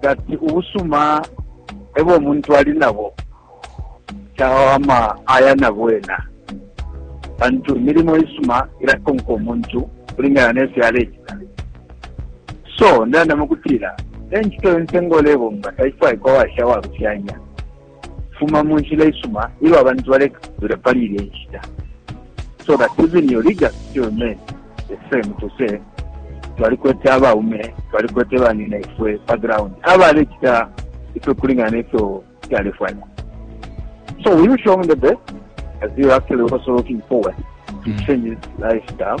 kati ubusuma ebo umuntu ali nabo cawama aya na bwena pantu imilimo isuma irakonka umuntu kulingana nefyo alecita so ndandama ukutila encito yonse ngolebomba taifwaikwa washa walufyanya fuma mu nshila isuma ilyo abantu balekabila pali ilya nshita so that even your leader still men the same to say twalikwete abaume twalikwete banina ifwe pa ground abalecita ifyo kulingana nefyo fyalefwaya so we were showing the best as we were actually also looking forward to mm. change lifestyle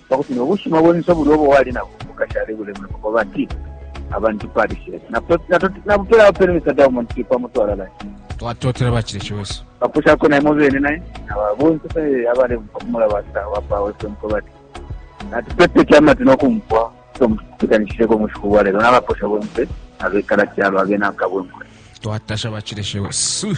Pa kuti no busuma bonse bulya ubo wali nabo, umukashi alebulembulapo pa banti abantu pali shela. Napopela apopene Mr. Dauman tuli pamo twalalanshanya. Twatotela bacilesho wesu. Bapushako na imwe bene naye aba bonse fye abalebumva ku mulabasa wa Power FM ko bati natupepe kyamati n'okumupwa tomupikanishisheko omushuku bwa lero n'abaposha bonse abekala kyalo abena kabwemkwe twatasha bakireshewesi